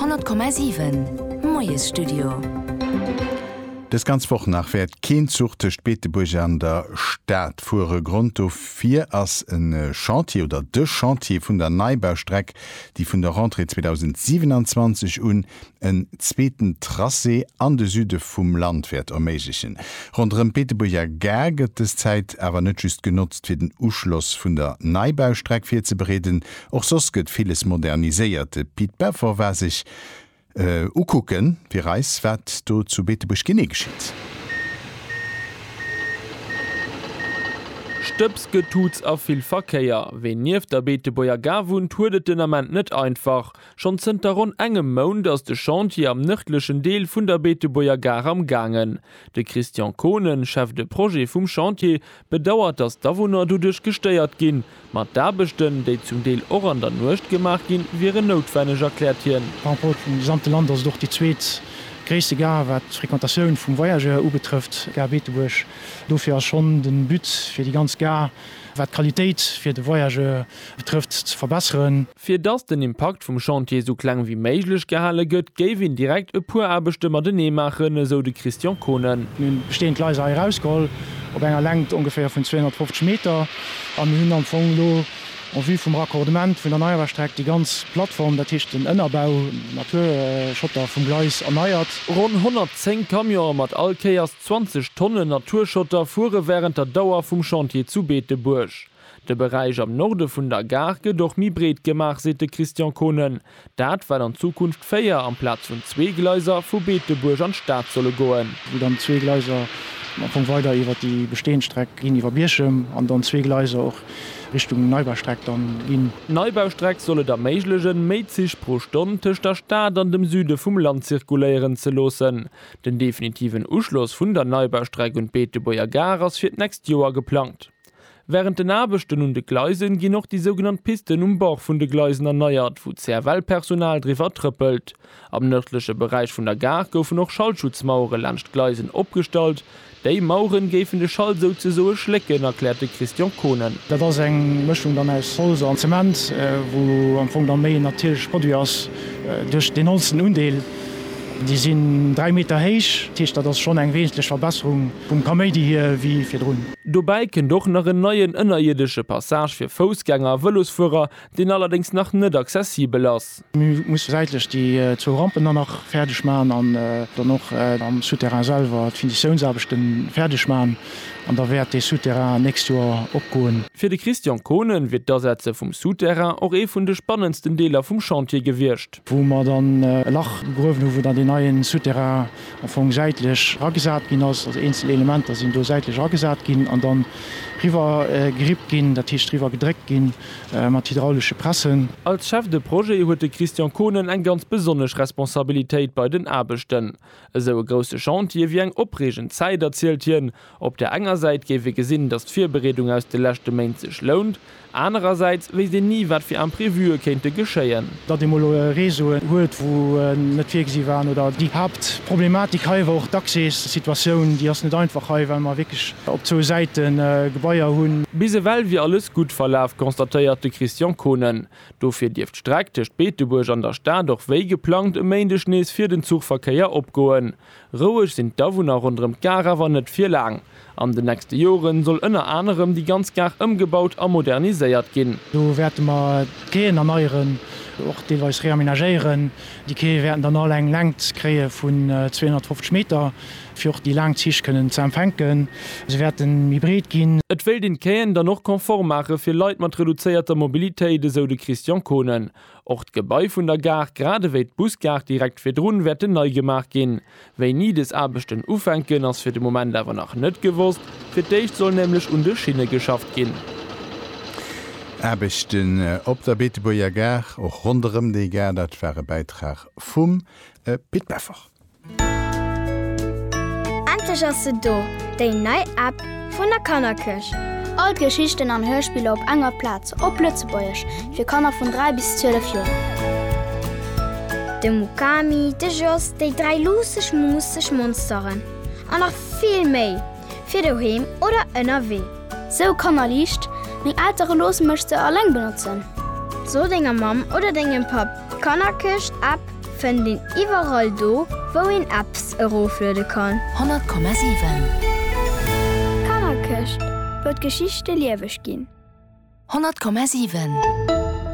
100,7 Moiesstudio. Dës ganz Woch nach wäert keen Zuch tëscht Beetebuerg an der Stad fuere. Grond dofir ass e Chantier oder de Chantier vun der Neibaustreck, déi vun der Rentrée 2027 un en zweeten Tracé an de Süde vum Land wäert erméiglechen. Ronderëm d'Beetebuerger Gare gëtt dës Zäit awer net just genotzt, fir den Uschloss vun der Neibaustreck virzebereeden, Och soss gëtt villes moderniséiert. De Pit Beffer war sech ukucke fir eis, wat do zu Beetebuerg genee geschitt. Stëbs, Getutz a vill Verkéier. Ween nieft der Beetebuerger Gare wunnt, huet et den Ament net einfach. Schonn zënter ronn engem Mount ass de Chantier am nërdlechen Deel vun der Beetebuerger Gare am Gaangen. De Christian Kohnen, Chef de Projet vum Chantier, bedauert, datt d'Awunner doduerch gestéiert ginn, Ma d'Aarbechten, déi zum Deel och an der Nuecht gemaach ginn, wieren noutwenneg, erkläert hien. Par rapport zum gesamte Land ass et och déi zweet gréisste Gare, wat d'Frequentatioun vum Voyageur ubetrëfft, d'Gare Beetebuerg. Dofir ass schonn de But, fir déi ganz Gare, wat d'Qualitéit fir de Voyageur betrëfft, ze verbesseren. Fir dass den Impakt vum Chantier esou kleng wéi méiglech gehale gëtt, géif een direkt e puer Aarbechte matenee maachen, esou de Christian Kohnen. Mir hunn bestehend Gleiser hei erausgeholl, op enger Längt ongeféier vun 250 Meter, a mir hunn am Fong elo en vue vum Raccordement vun der Neiaarbechtstreck déi ganz Plattform, dat heescht den Ënnerbau, Naturschotter, vum Gleis erneiert. Ronn 110 Camionen mat all Kéiers 20 Tonnen Naturschotter fuere wärend der Dauer vum Chantier zu Beetebuerg. De Beräich am Norde vun der Gare gëtt och méi breet gemaach, seet de Christian Kohnen. Dat, well an Zukunft véier amplaz vun zwee Gleiser vu Beetebuerg an d'Stad solle goen. Wou dann zwee Gleiser am Fong weider iwwer déi bestehend Streck ginn, iwwer Bierchem, an dann zwee Gleiser och Richtung Neubaustreck dann ginn. D'Neubaustreck soll et erméiglechen, méi Zich pro Stonn tëscht der Stad an dem Süde vum Land zirkuléieren ze loossen. Den definitiven Uschloss vun der Neubaustreck un d'Beetebuerger Gare ass fir d'nächst Joer geplangt. Wärend den Aarbechten un de Gleisen ginn och déi sougenannt Pisten um Bord vun de Gleisen erneiert, wou d'CFL-Personal driwwer trëppelt. Am nërdleche Beräich vun der Gare goufen och Schallschutzmauere laanscht d'Gleisen opgestallt. Déi Maueren géifen de Schall souzesoe schlécken, erkläert de Christian Kohnen. Dat ass eng Mëschung dann aus Holz an Zement, wou am Fong dann méi en natierleche Produit ass duerch deen holzenen Undeel. Déi sinn dräi Meter héich, dat heescht dat ass schonn eng wesentlech Verbesserung. Vum Kaméidi hier ewéi virdrun. Dobäi kënnt och nach en neien ënnerierdesche Passage fir Foussgänger a Vëlosfuerer, deen allerdéngs nach net accessibel ass. Mir musse säitlech déi zwou Rampen dann nach fäerdeg maachen an dann och am Souterrain selwer d'Finitiounsaarbechte fäerdeg maachen an da wäert dee Souterrain d'nächst Joer opgoen. Fir de Christian Kohnen wier d'Asetze vum Souterrain och ee vun de spannendsten Deeler vum Chantier gewiescht. wou mer dann e Lach gegruewen hu wou dann deen neien Souterrain am Fong säitlech eragesat ginn ass, also eenzel Elementer sinn do säitlech eragesat ginn an dann riwwer gerippt ginn, dat heescht riwwer gedréckt ginn mat hydraulesche Pressen. Als Chef de Projet huet de Christian Kohnen eng ganz besonnesch Responsabilitéit bei den Aarbechten. Esou e grousse Chantier wier eng opreegend Zäit, erzielt hien. Op der enger Säit géif ee gesinn, datt d'Virbereedung aus de leschte Méint sech lount. Anerersäits wéisst een ni, wat fir Imprevue kéinte geschéien. Datt ee mol Réseauen huet, wou en net virgesi waren, oder déi Haaptproblematik hei war och d'Accès-Situatioun. Déi ass net einfach hei, well mer wierklech op zwou Säite Gebaier hunn. Bis ewell wier alles gutt verlaf, constatéiert de Christian Kohnen. Dofir dierf d'Streck tëscht Beetebuerg an der Stad och wéi geplangt e Méindeg nees fir den Zuchverkéier opgoen. Roueg sinn d'Awunner ronderëm d'Gare awer net fir laang. An den nächste Joren soll ënner anerem déi ganz Gare ëmgebaut a moderniséiert ginn. Do wäerte mer d'Quaien erneieren, och deelweis reamenagéieren. Déi Quaie wäerten dann all eng Längt kréie vun 250 Meter. Fir och déi laang Zich kënnen ze empfänken. Se wäerte méi breet ginn. Et wéilt een d'Quaien dann och konform maache fir Leit mat reduzéierter Mobilitéit, esou de Christian Kohnen. Och d'Gebai vun der Gare, grad ewéi d'Busgare direkt virdrun, wäerten nei gemaach ginn. Wéini dës Aarbechten ufänken, ass fir de Moment awer nach net gewosst. Fir d'éischt soll nämlech un de Schinne geschafft ginn. Aarbechten op der Beetebuerger Gare, och ronderëm déi Gare. Dat war e Bäitrag vum Pit Beffort. Endlech ass se do, déi nei App vun der Kannerkirch! All d'Geschichten an Hörspiller op enger Plaz, op Lëtzebuergesch, fir Kanner vun 3 bis 12 Joer. De Mukami, de Jos, déi dräi luusseg, muusseg Monsteren an nach vill méi! fir doheem oder ënnerwee. Sou Kannerliicht, Meng Eltere loosse mech se alleng benotzen. So denger Mamm oder dengem Papp, d'Kannerkëscht App fënnt een iwwerall do, wou een Apps erofluede kann. 100,7. D'Kannerkëscht, wou d'Geschichte lieweg ginn. 100,7.